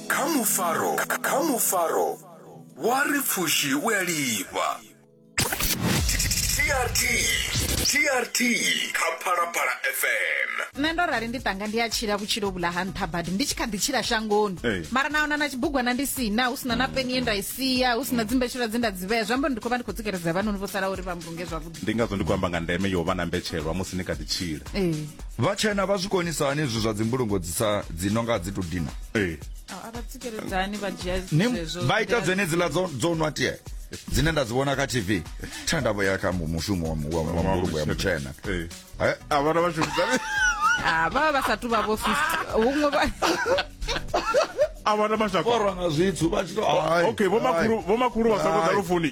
kha mufaro kha mufaro wa ri pfushi u a lifha trt trt kha phalaphala fm nṋe ndo rali ndi tanga ndi a tshila vhutshilo vhula ha nṱha badi ndi tshi kha ḓi tshila shangoni Ee. mara na ona na tshibugwana ndi sina hu sina na peni ye nda i sia hu sina dzimbetshela dze nda dzi vhea zwi amba uri ndi khou vha ndi khou tsikeledza vhanoni vho sala uri vha mbulunge zwavhuḓi ndi ngazwo ndi khou amba nga ndeme yo vha na mbetshelwa musi ni kha ḓi tshila ee vhatshena vha zwi konisa hani izwi zwa dzimbulungo dzi sa dzi no nga dzi to dina ee a vha tsikeledzani vha dzhia Ni- zwezwo vha ita nḓila- dzenedziḽa dzo dzo nwa tie dzine nda dzi vhona kha tv tha nda vho ya kha mu- mushumo wa mu- wa- wa mbulungo ya mutshena ee Eh, a vhana vha shumisani Ah, vha vha vha sa tu vha vho fis- huṅwe vha a vhana mashaka borwa nga zwithu vha tshi to ai, okay vho makhulu ai. vho makhulu vha songo Ai. ḓa lufuni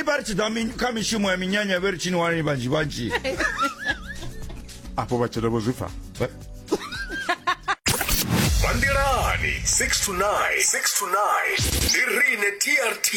ipari tidza mi- kha mishumo ya minyanya vhe ri tshini wanani vhanzhi vhanzhi afho vhatshena vho zwi pfa Bandelani 6 to 9, 6 to 9. Ndi rine TRT.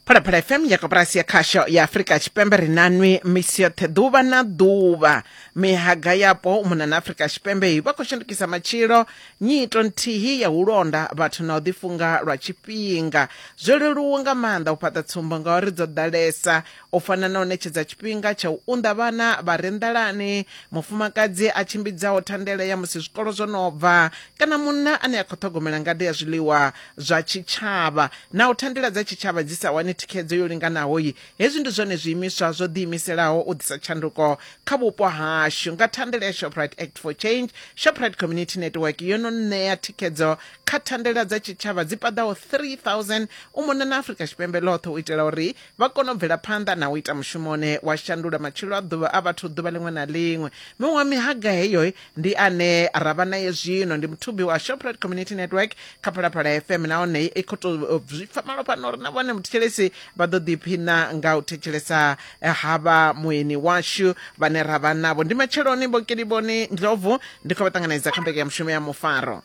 phalaphala fm ya koporasi ya khasho ya afurika tshipembe ri nanwi misi yoṱhe ḓuvha na ḓuvha mihaga yapo u mona na afurika tshipembe vha khou shandukisa matshilo Nyito nthihi ya u londa vhathu na u ḓifunga lwa tshifhinga zwo leluwa nga maanḓa u fhaṱa tsumbo ngauri dzo ḓalesa, u fana na u ṋetshedza tshifhinga tsha u unḓa vhana vha re nḓalani, mufumakadzi a tshimbidzaho thandela ya musi zwikolo zwo no bva kana munna ane a khou ṱhogomela ngade ya zwiḽiwa zwa tshitshavha. Naho thandela dza tshitshavha dzi sa wani thikhedzo yo linganaho, Hezwi ndi zwone zwiimiswa zwo ḓiimiselaho u ḓisa tshanduko kha vhupo hashu. Nga thandela ya Shoprite Act for Change, Shoprite Community Network yo no ṋea thikhedzo kha thandela dza tshitshavha dzi paḓaho 3000 u mona na Afrika Tshipembe ḽoṱhe u itela uri vha kone u bvela phanḓa na u ita mushumo une wa shandula matshilo a ḓuvha a vhathu ḓuvha ḽiṅwe na ḽiṅwe. Miṅwe ya mihaga heyo ndi ane ra vha naye zwino ndi muthubi wa shoprite community network kha phalaphala fm nahone i khou to zwi pfa malo fhano uri na vhone muthetshelesi vha ḓo ḓiphina nga u thetshelesa eh, havha mueni washu vhane ra vha navho ndi matsheloni vhokeliboni ndlovu ndi khou vha ṱanganedza kha mbeke ya mushumo ya mufaro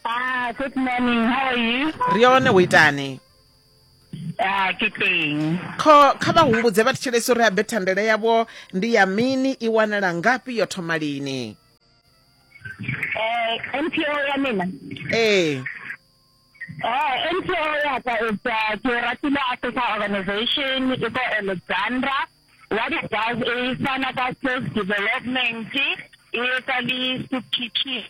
Ah, good morning. How are you? ri yone wo itani Ah, ke teng kho kha vha humbudze vha thetshelesi uri habe thandela yavho ndi ya mini i wanala ngafhi yo thoma lini um mpo ya mina ee Eh, NPO ya ka is uh, ke ratile Africa Organization e ko Alexandra. What it does is fana ka skills development, e etsa le speech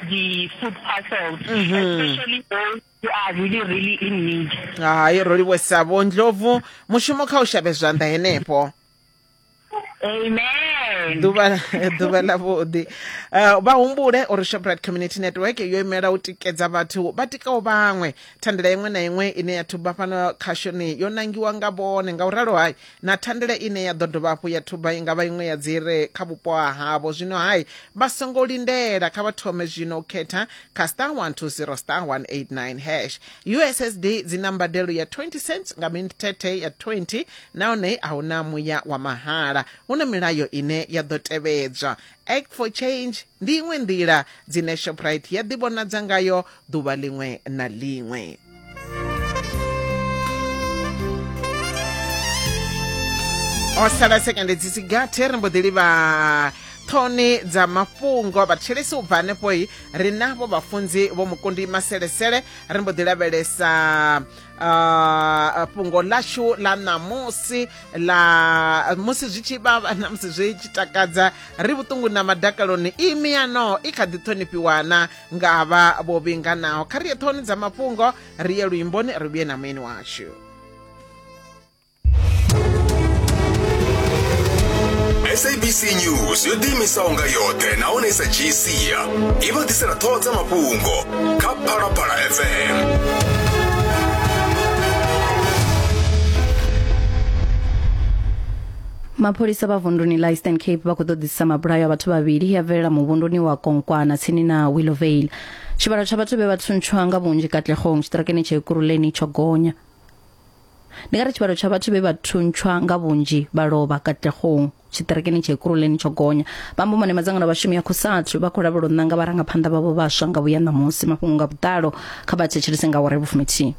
the food parcels, especially those who are really, really in need. hayi roliwesa vho ndlovu mushumo kha u shavhe zwanḓa henefho Amen. ḓuvha ḓuvha ḽavhuḓi Eh, vha humbule uri shoprite community network yo imela u tikedza vhathu vha tikaho vhaṅwe thandela iṅwe na iṅwe ine ya thuba fhano khashoni yo nangiwa nga vhone nga u ralo hai na thandela ine ya ḓo dovha hafhu ya thuba i nga vha iṅwe ya dzi re kha vhupo ha havho zwino hai vha songo lindela kha vha thome zwino u khetha kha star 120 star 189 hash ussd dzi na mbadelo ya 20 cents nga minthethe ya 20 nahone a hu na muya wa mahala hu na milayo ine ya ḓo tevhedzwa act for change ndi iṅwe nḓila dzine shoprite ya ḓivhonadza ngayo ḓuvha ḽiṅwe na ḽiṅwe o sala sekende dzi si gathe ri mbo ḓi livha ṱhoni dza mafhungo vhathetshelesi u bva hanefhoi ri navho vhafunzi vho mukundi maselesele ri mbo ḓi lavhelesa Uh, fhungo lashu la ṋamusi la musi zwi tshi vhavha na musi zwi tshi takadza ri vhuṱungu na madakaloni i miyano i kha ḓi ṱhonifhiwana nga vha vho vhinganaho kha ri ye ṱhoni dza mafhungo ri ye luimboni ri vhuye na mueni washu sabc news yo ḓiimisaho nga yoṱhe nahone sa gcia i vha ḓisela ṱhoho dza mafhungo kha phalaphala fm mapholisa vha vunduni la eastern cape vha khou ṱoḓisisa mabulayo a vhathu vhavhili ya bvelela muvhunduni wa konkwana tsini na willowvale tshivhalo tsha vhathu vhe vha thuntshwa nga vhunzhi katlegong tshiṱirakeni tsha ekuruleni tsho gonya Ndi nga ri tshivhalo tsha vhathu vhe vha thuntshwa nga vhunzhi vha lovha Katlehong tshiṱerekeni tsha Ekurhuleni tsho gonya. Vha amba mone madzangano a vhashumi a Cosatu vha khou lavhela u ṋanga vharangaphanḓa vhavho vhaswa nga vhuya ṋamusi. Mafhungo nga vhuḓalo kha vha thetshelese nga awara ya vhufuminthihi.